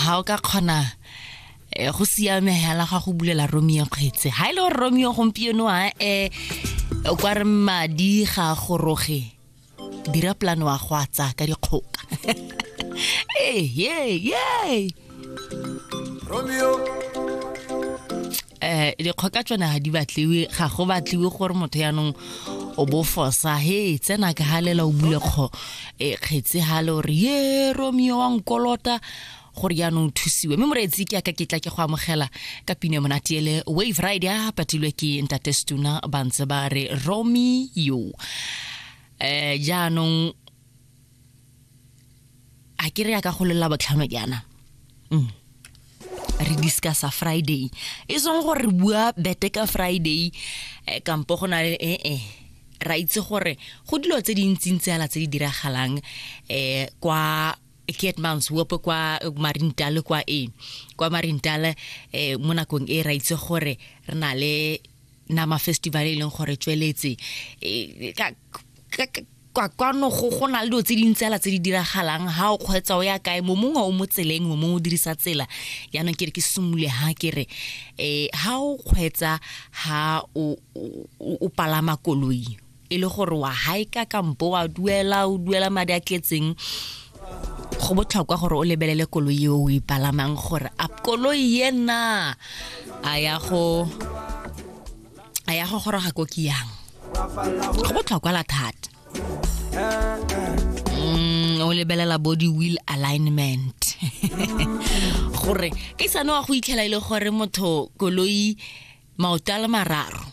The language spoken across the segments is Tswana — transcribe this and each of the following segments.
ga o ka kgona eh, go siame hela ga go bulela romeo kgetse ga e le gore romeo gompieno a e kwa re madi ga goroge dira polane wa go a tsaya ka dikgoka ee ee eh dikgoka tsone ga di batliwe ga go batliwe gore motho yaanong o bofosa he tsena ka galela o bule kgo e kgetse ha le gore ye romeo wa nkolota gore jaanong thusiwe mme moreetsi ke aka ke tla ke go amogela ka pine monate ele wave ride a patilwe ke ntate stuna ba ntse ba re romeo um jaanong a ke re ya ka go lelela botlhano jaana mm. re discussa friday e seng gore re bua bete ka friday eh, kampo go na le ee eh, eh. ra itse gore go dilo tse dintsintsi ala tse di diragalang um kwa ketmans wope kwa marintale kwa e kwa marintale um mo nakong e ra itse gore re na le na mafestival e leng gore tsweletse e, kwa kwano go go na le dilo tse dintsi ala tse di diragalang ha o kgwetsa o ya kae mo mongwe o mo tseleng mo mongwe o dirisa tsela yaanong ke re ke simole ha ke re um ha o kgwetsa ha o palama koloi e le gore wa haika kampo wa duela o duela madi a tletseng go botlhokwa gore o lebelele koloi eo o e palamang gore a koloi ena a ya go a ya go goroga ko ke yang go botlhokwa la thata mm, o lebelela bo di-wheel alignment gore ke sane wa go itlhela e le gore motho koloi maoto a le mararo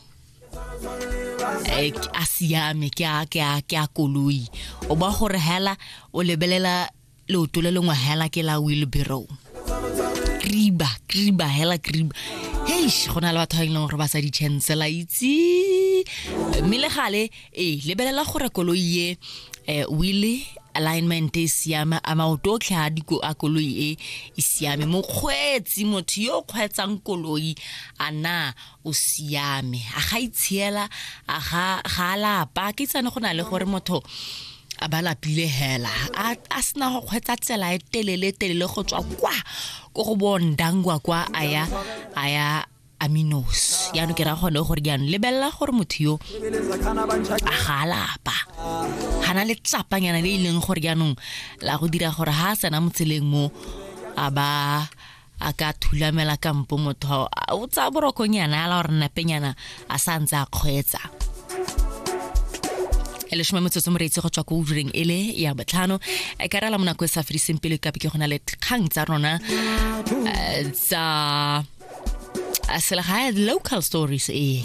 eh, a siame ke a ke a ke a koloi o ba gore hela o lebelela leoto le lengwe hela ke la wheelbarrow kriba kriba hela kriba heish go na le batho ba e leng gore ba sa di-chancela itse mme le gale ee lebelela gore koloi e um wile alignment e siame a maoto otlhe a diko a koloi e e siame mokgweetsi motho yo o kgweetsang koloi a na o siame a ga itshiela a ga ga a lapa ke tsane go na le gore motho a ba lapile hela a a sena go kgweetsa tsela e telele telele go tswa kwa ko go bondangwa kwa a ya a ya aminos yaanong ke ra gone gore jaanong lebelela gore motho yo a ga a lapa ga na le tsapanyana le e leng gore jaanong la go dira gore ga a tsena motseleng mo a ba a ka thulamela kampo motho o tsaya borokonyana ya la gore napenyana a sa ntse a kgweetsa e lesome metsotso moreetsi go tswa ko ureng e le ya botlhano e ka rela monako e sa fediseng pele kape ke go na le kgang tsa rona eh, tsa selegae local stories ee